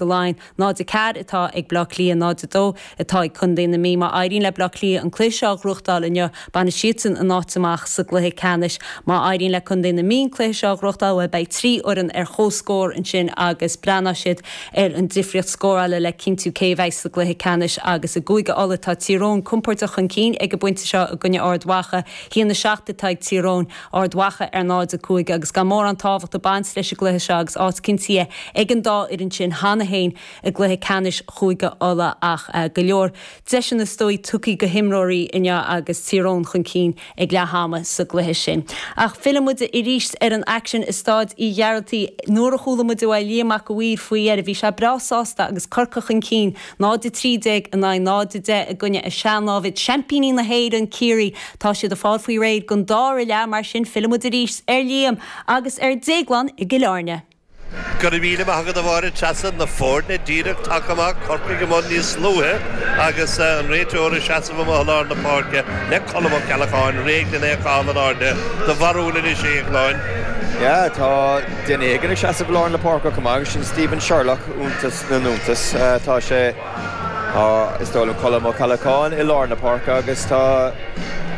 Laighean, 0, 4 atá ag Baile Átha Cliath, 0, 2 atá ag contae na Mí. Má éiríonn le Baile Átha Cliath an cluiche seo a ghnóthachtáil inniu, bainfidh siadsan a n-áit amach sa gcluiche ceannais. Má éiríonn le contae na Mí an cluiche seo a ghnóthachtáil, bhuel, beidh trí fhoireann ar comhscór ansin agus breathnóidh siad ar an difríocht scórála le cinntiú cé a bheidh sa gcluiche ceannais. Agus i gCúige Uladh, tá Tír Eoghain compordach chun cinn ag an bpointe seo i gcoinne Ard Mhacha. 1, 7 atá ag Tír Eoghain. Ard Mhacha ar 0-5 agus gan mórán tábhacht ag baint leis an gcluiche seo agus áit cinntithe ag an dá fhoireann sin cheana féin i gcluiche ceannais Chúige Uladh ach go leor deiseanna is dóigh tugtha go himreoirí inniu agus Tír Eoghain chun cinn ag leath ama sa gcluiche sin. Ach fillfidh muide arís ar an aicsean i Staid Uí Ghearaltaigh. Nuair a chuala muid uaidh Liam Mac a' Mhaoir faoi dheireadh bhí sé breá sásta agus Corcaigh chun cinn 0, 13 in aghaidh 0, 10 i gcoinne a sean-námhad, seaimpíní na hÉireann, Ciarraí. Tá siad ag fáil faoi réir don dára leath, mar sin fillfidh muid arís ar Liam agus ar Dhéaglán i gCill Airne. Go raibh míle maith agat a Mháire Treasa, na foirne díreach tagtha amach, Corcaigh amuigh níos luaithe agus an réiteoir ag seasamh amuigh i lár na páirce le Colm Ó Ceallacháin, réidh len é a chaitheamh in airde. Do bharúil anois, a Dhéagláin? Yeah, tá duine éigin ag seasamh i lár na páirce acu chomh maith agus sin Stephen Sherlock. na n-iontas. Tá sé, is dóigh liom, Colm Ó Ceallacháin i lár na páirce agus tá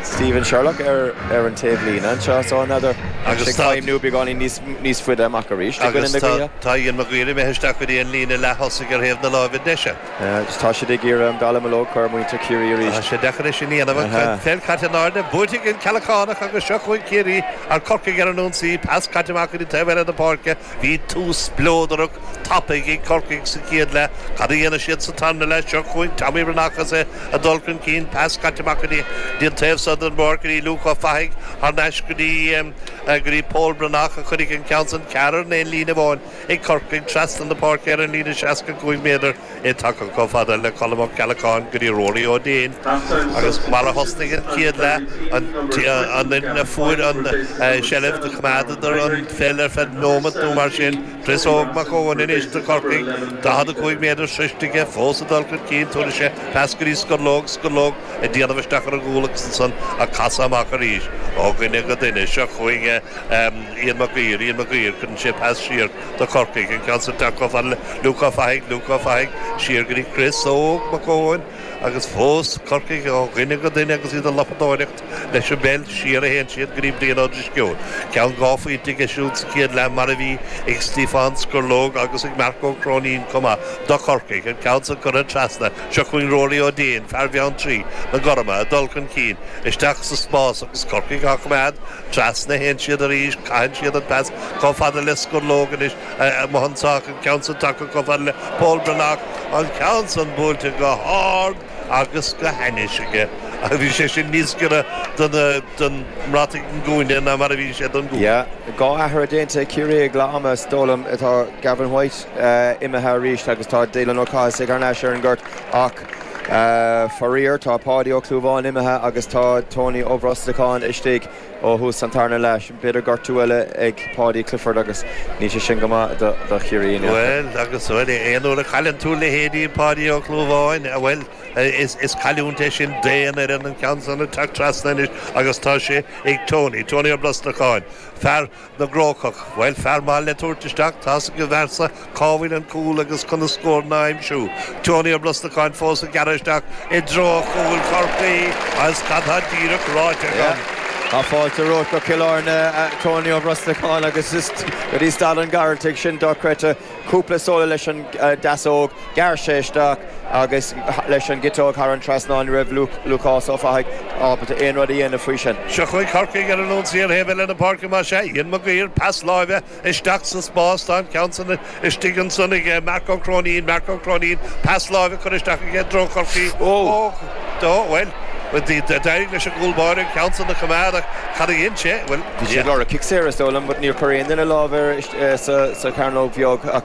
Stephen Sherlock ar an taobhlíne anseo so n'fheadar, tá sé ag feidhmiú beagáinín níos faide amach arís i gcoinne na gaoithe. Agus tá Ian Maguire imithe isteach go dtí an líne leath-thosaigh ar thaobh na láimhe deise. Agus tá siad ag iarraidh an dallamullóg a chur ar mhuintir Chiarraí arís. Tá sé deacair é sin a dhéanamh. An pheil caite in airde, buaite ag an Ceallachánach agus seo chugainn Ciarraí, ar Corcaigh ar an ionsaí, pas caite amach go dtí taobh eile na páirce, Bhí tús spleodrach, tapaidh ag Corcaigh sa chéad leath. Cad a dhéanfaidh siad sa tarna leath? Seo chugainn Tommy Breathnach is é ag dul chun cinn. Pas caite amach go dtí an taobh so den bpáirc go dtí Luke Ó Fathaigh. Thar n-ais go dtí go dtí Pól Breathnach a cuireadh an ceann san. Ceathrar in aon líne amháin ag Corcaigh trasna na páirce ar an líne seasca cúig méadar. í tagtha chomh fada le Colm Ó Ceallacháin go dtí Ruairí Ó Déin agus mar a thosnaigh an chéad leath, an fhoireann a fuair an tseilbh, do choimeádadar an pheil ar feadh nóimeant nó mar sin. Chris Óg Mac Eoin anois do Chorcaigh, 45 méadar sroichte aige fós ag dul chun cinn, tugann sé pas go dtí Scurlóg, Scurlóg ag déanamh isteach ar an gcúl agus ansan á casadh amach arís ó dhuine go duine, seo chugainn Ian Mac Uidhir, Ian Mac Uidhir, cuireann sé pas siar. do Chorcaigh, an ceann san tagtha chomh fada le Luke Ó Fathaigh, Luke Ó Fathaigh, siar go dtí Chris Óg Mac Eoin agus fós Corcaigh ó dhuine go duine agus iad ag lopadóireacht leis an bpeil, siar a théann siad go dtí Brian Ó Drisceoil, ceann dhá phointe aige siúd sa chéad leath mar a bhí ag Stíofán Scurlóg agus ag Marc Ó Cróinín chomh maith do Chorcaigh, an ceann san curtha trasna, seo chugainn Ruairí Ó Déin, fear Bheanntraí na gorma, ag dul chun cinn, isteach sa spás agus Corcaigh á choimeád trasna, théann siad arís, caitheann siad an pas. Chomh fada le Scurlóg anois, Mohun Sagh an ceann san tagtha chomh fada le Pól Breathnach an ceann san buailte go hard agus go hainnis aige. Bhí sé sin níos giorra don mbrataigh i gcúinne ná mar a bhí sé don gcúl. Dhá athrú déanta ag Ciarraí ag leath ama, is dóigh liom. Tá Gavin White imithe arís agus tá Dylan Ó Cathasaigh thar n-ais ar an ngort. Ach faraor, tá Páidí Ó Clúmháin imithe agus tá Tony Ó Brosnacháin istigh. Ó thús an tarna leath, b'fhéidir gortú eile ag Paudie Clifford agus níl sé sin go maith do Chiarraí. Níl agus bhuel, aon uair a chailleann tú leithéidí Páidí Ó Clúmháin, bhuel, is cailliúint é sin d'aon fhoireann. An ceann san ag teacht trasna anois agus tá sé ag Tony, Tony Ó Brosnacháin, fear. na gCrócach. Bhuel, fear maith le tabhairt isteach, tá's ag an bhfear so cá bhfuil an cúl agus conas scóranna a aimsiú. Tony Ó Brosnacháin fós ag gearradh isteach i dtreo chúl Chorcaí agus cad tá díreach ráite agam? Tá fáilte romhat go Cill Airne, a Tony Ó Brosnacháin, agus go dtí Staid an Ghearaltaigh, sin dochreidte. Cúpla solo leis an deasóg, ghearr sé isteach agus leis an gciteog thar an trasnán. Ní raibh Lúcás Ó Fathaigh ábalta aon rud a dhéanamh faoi sin. Seo chugainn Corcaigh ar an ionsaí ar thaobh eile na páirce más ea. Ian Maguire, pas láimhe isteach sa spás, tá an ceann san istigh ansan ag Mark Ó Cróinín. Mark Ó Cróinín, pas láimhe curtha isteach aige i dtreo Chorcaí. Ó! Bhuel, d'éirigh leis an gcúl báire an ceann san a choimeád ach cad a dhein sé? Bhuel, bhí sé ag lorg cic saor is dóigh liom but níor chuir aon duine lámh air. sa chearnóg bheag ach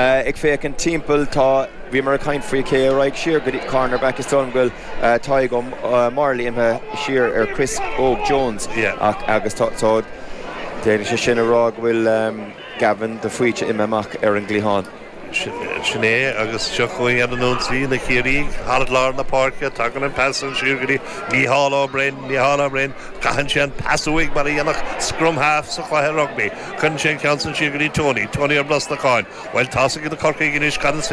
ag féachaint timpeall tá, bhíomar ag caint faoi cé a raghadh siar go dtí corner back is dóigh liom go bhfuil Tadhg Ó Máirlí imithe siar ar Chris Óg Jones ach agus tá, tá, déarfaidh sé sin a rá go bhfuil Gavin de Faoite imithe amach ar an gcliathán. Sin é, agus seo chugainn ar an ionsaí na Ciarraígh, thar lár na páirce, tagann an pas san siar go dtí Mícheál Ó Broin, Mícheál Ó Broin, caitheann sé an pas uaidh mar a dhéanfadh scrum half sa chluiche rugbaí, cuireann sé an ceann san siar go dtí Tony, Tony Ó Brosnacháin, bhuel, tá's ag na Corcaígh anois, cad is féidir